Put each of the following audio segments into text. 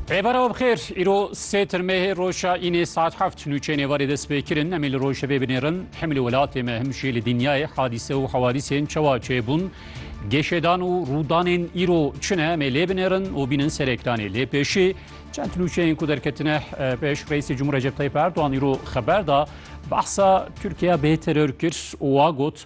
Rêbara we bixêr îro sê tirmehê roja înê saet heft nûçeyên êvarê dest pê kirin em ê li rojevê binêrin hem li welatê me him jî li dinyayê hadîse û hewadîsên çawa çêbûn gêşêdan û rûdanên îro çi ne em ê lê binêrin û bînin ser ekranê lê pêşî çend nûçeyên ku derketine pêş reîsê Cumhur Recep Tayyip Erdogan îro xeber da behsa Tirkiye bê teror kir û wa got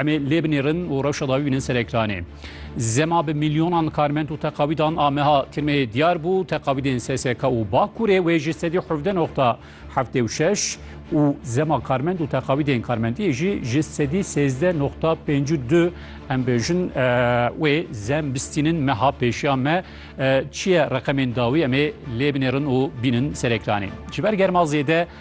Em ê lê binêrin û rewşa dawî bînin ser ekranê. Zema bi milyonan karmend û teqawîdan a meha tirmeyê diyar bû, teqawîdên SSK û Bakurê wê ji sedî hevdeh noqta heftê û şeş û zema karmend û teqawîdên karmendiyê jî ji sedî sêzdeh noqta pêncî û du em bêjin wê zem bistînin meha pêşiya me çi ye reqemên dawî em ê lê binêrin û bînin ser ekranê. Ji ber germa zêde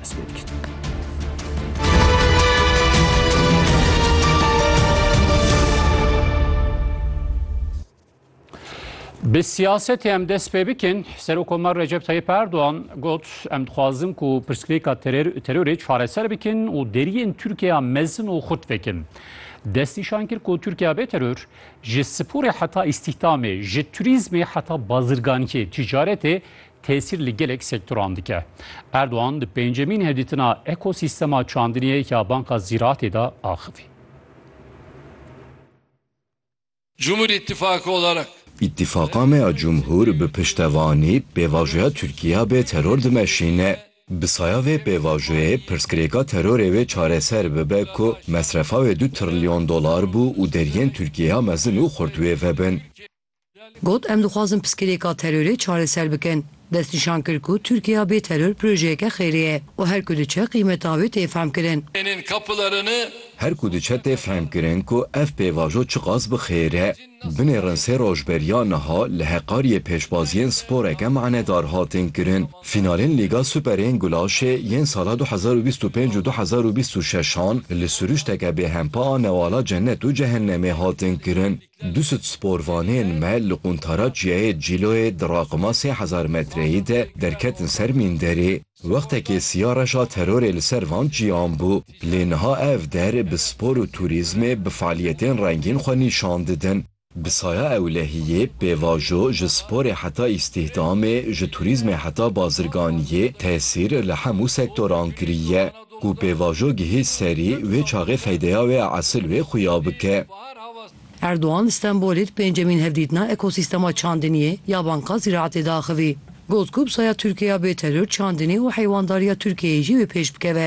dest pê dikin. Bi siyasetê em dest pê bikin, Serokkomar Recep Tayyip Erdoğan got em dixwazin ku pirsgirêka terorê çareser bikin û deriyên Tirkiyeya mezin û xurt vekin. Destnîşan kir ku Tirkiye bê teror ji sporê heta îstîhdamê, ji turîzmê heta bazirganiyê, tîcaretê tesîr li gelek sektoran dike. Erdogan di pêncemîn hevdîtina ekosîstema çandiniyê ya Banka Zîratê de axivî. Cumhur İttifakı olarak. Îttifaqa me ya Cumhur bi piştevanî pêvajoya Tirkîya bê teror dimeşîne. Bi saya vê pêvajoyê pirsgirêka terorê wê çareser bibe ku mesrefa wê du trilyon dolar bû û deriyên Tirkîya mezin û xurt wê vebin. Got, Em dixwazin piskilêka terorê çareser bikin. Destnîşan kir ku Tirkiya bê teror projeyeke xêrê ye û her ku diçe qîmeta wê tê fehmkirin. Her ku diçe tê fehmkirin ku ev pêvajo çiqas bi xêr e. Binêrin sê roj beriya niha li Heqariyê pêşbaziyên sporeke manedar hatin kirin. Fînalên Lîga Super ên Gulaşê yên sala du hezar û bîst û pênc û du hezar û bîst û şeş an li siruşteke bêhempa a newala cennet û cehennemê hatin kirin. Du sed sporvanên me li quntara Çiyayê Cîloyê di raqima sê hezar metreyê de derketin ser mînderê. Wextekê siya reşa terorê li ser van çiyan bû, lê niha ev der bi spor û turîzmê bi fealiyetên rengîn xwe nîşan didin. Bi saya ewlehiyê, pêvajo, ji sporê heta îstîhdamê, ji turîzmê heta bazirganiyê tesîr li hemû sektoran kiriye. ku pêvajo gihî serî wê çaxê feydeya wê ya esil wê xuya bike. Erdogan li Stenbolê di pêncemîn hevdîtina ekosîstema çandiniyê ya Banka Zîraetê de axivî. Got ku bi saya Tirkiye ya bêteror çandinî û heywandarîya Tirkiyeyê jî wê pêş bikeve.